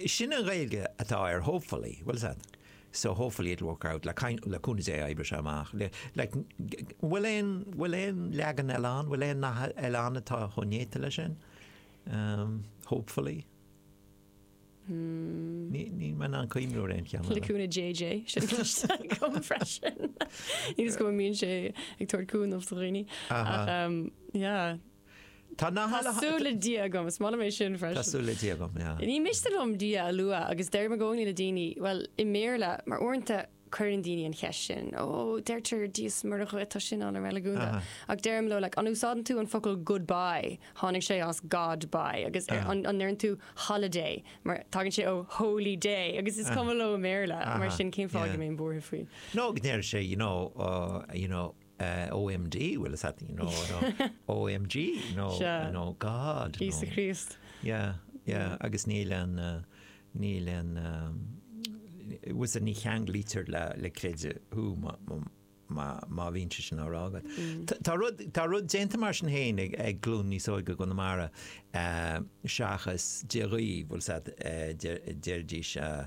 Sin í an Ghaeilge atá ar hopefully, bhuel said, so hopefully it'll work out, le cúnamh Dé oibreoidh sé amach. Like, an bhfuil aon, an bhfuil aon leagan eile ann, an bhfuil aon nath eile ann atá chomh néata leis sin? Um, hopefully. Ní raibh mé in ann cuimhniú ar aon cheann eile. Le cúnamh JJ, sin cloiste agam freisin. Níl a fhios agam an mbíonn sé ag tabhairt cúnamh do dhaoine, ach, um, yeah. Inshallah. Tá súil le Dia agam, is maith liom é sin freisin. Tá súil le Dia agam, yeah. Ní miste liom Dia a lua agus deirim i gcónaí le daoine, bhuel, i mBéarla, mar uaireanta cuireann daoine an cheist sin, ó, deirtear Dia is Muire dhuit, tá sin an-reiligiúnda, ach deirim leo, like, an úsáideann tusa an focal goodbye? Tháinig sé as God by, agus an ndeireann tú holiday? Mar tagann sé ó holy day, agus is cuma leo i mBéarla, mar sin cén fáth go mbeadh mé buartha faoi. Nó go ndeir sé, you know, you know, OMD, well is that, you know, OMG, no, no God. Íosa Críost. Yeah, yeah, agus níl an, níl an, bhfuil a fhios agat ní cheanglaítear le, le creideamh thú, má bhíonn sé sin á rá agat. Mm. Tá rud déanta mar sin féin ag glún níos óige i gConamara eh, seachas Dia dhaoibh, bhfuil eh, deir daoine eh,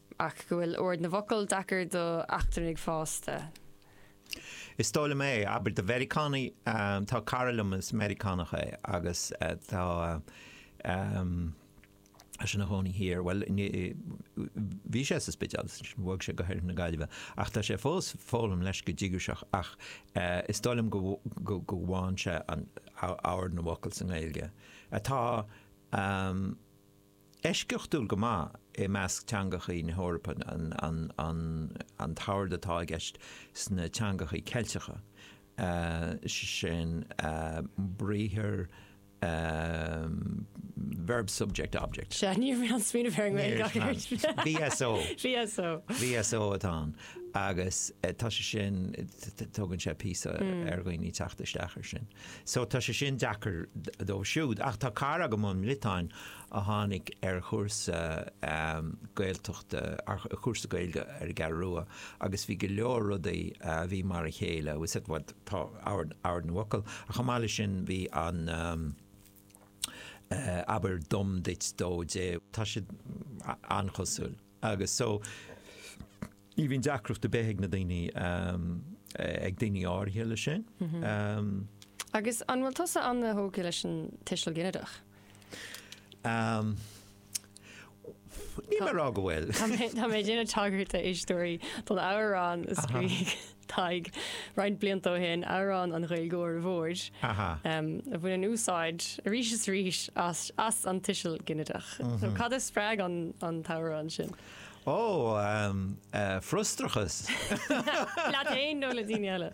ach go bhfuil ord na bhfocal deacair do eachtrannaigh fásta. Is dóigh liom, abair do Mheiriceánaigh. Tá cara liom is Meiriceánach é agus tá sé ina chónaí thiar, bhuel, bhí sé sa Spidéal agus ansin bhog sé go hOirthear na Gaillimhe, ach tá sé fós ag foghlaim leis go díograiseach ach is dóigh liom go bhfaigheann sé ord na bhfocal sa nGaeilge atá. eisceachtúil go maith i measc teangachaí na hEorpa an t-ord atá i gceist sna teangachaí Ceilteacha, sin briathar verb-subject-object. Sea, ní raibh mé ag smaoineamh ar an nGaeilge ach ar sin. VSO. VSO. VSO atá ann agus tá sé sin, tógann sé píosa ar dhaoine teacht isteach ar sin. So tá sé sin deacair dóibh siúd. Ach tá cara agam ón mBriotáin a tháinig ar chúrsa Gaeltachta, ar chúrsa Gaeilge ar an gCeathrú Rua agus bhí go leor rudaí a bhí mar a chéile, bhfuil a fhios agat, tá ord na bhfocal ach chomh maith leis sin bhí an eh abair dom duit dó di, tá siad an-chosúil. Agus so, ní bhíonn deacracht ar bith ag na daoine, ag daoine áirithe leis sin. Agus an bhfuil tusa an-tógtha leis an tuiseal ginideach? Níl mé a rá go bhfuil. Tá mé ag déanamh tagairt a éisteoirí don amhrán a scríobh. Tadhg, roinnt blianta ó shin, amhrán an Ghaeilgeora Mhóir, a bhaineann úsáid arís is arís as an tuiseal ginideach. Cad a spreag an t-amhrán sin? Ó, frustrachas. Leat féin nó le daoine eile?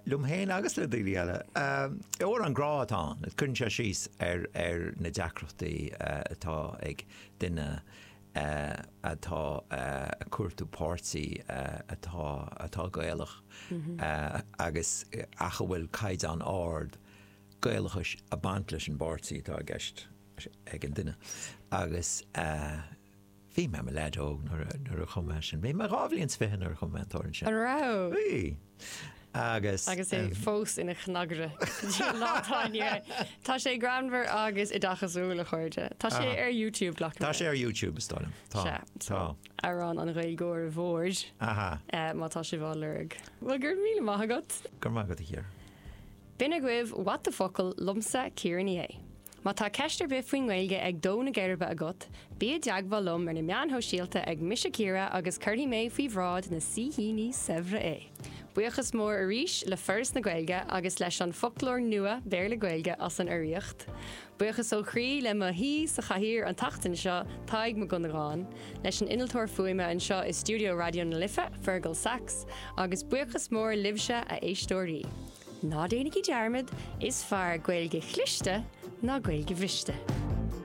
Liom fhéin agus le daoine eile. Amhrán grá atá ann, cuireann sé síos ar na deacrachtaí atá ag duine, atá a cuartú páirtí atá atá Gaelach agus ach a bhfuil caighdeán ard Gaelachais a baint leis an bpáirtí atá i gceist ag an duine agus bhí mé i mo leaid óg nuair a nuair a chum mé sin. Bhí mé dhá bhliain 's fiche nuair a chum mé an t-amhrán sin. An raibh? Bhí. agus. Agus é fós ina chnagaire go dtí an lá atá inniu é. Tá sé greannmhar agus oideachasúil a chairde. Tá sé ar YouTube glacaim Tá sé ar YouTube is dóigh liom. Tá. Tá. Amhrán an Ghaeilgeora Mhóir. Aha. Má tá sibh á lorg. Bhuel go raibh míle maith agat. Go raibh maith agat a Chiara. B'in agaibh What the Focal liomsa Ciara Ní É. Má tá ceist ar bith faoin nGaeilge ag dó na geirbe agat, bí i dteagmháil liom ar na meáin shóisialta ag Mise Ciara agus cuirfidh mé faoi bhráid na saoithíní saibhre é! Buíochas mór arís le Foras na Gaeilge agus leis an Foclóir Nua Béarla-Gaeilge as an urraíocht. Buíochas ó chroí le mo shaoi sa chathaoir an tseachtain seo, Tadhg Mac Dhonnagáin, leis an innealtóir fuaime anseo i stiúideo Raidió na Life, Fearghal Saxe, agus buíochas mór libhse, a éisteoirí! Ná déanaigí dearmad, is fearr Gaeilge chliste ná Gaeilge bhriste.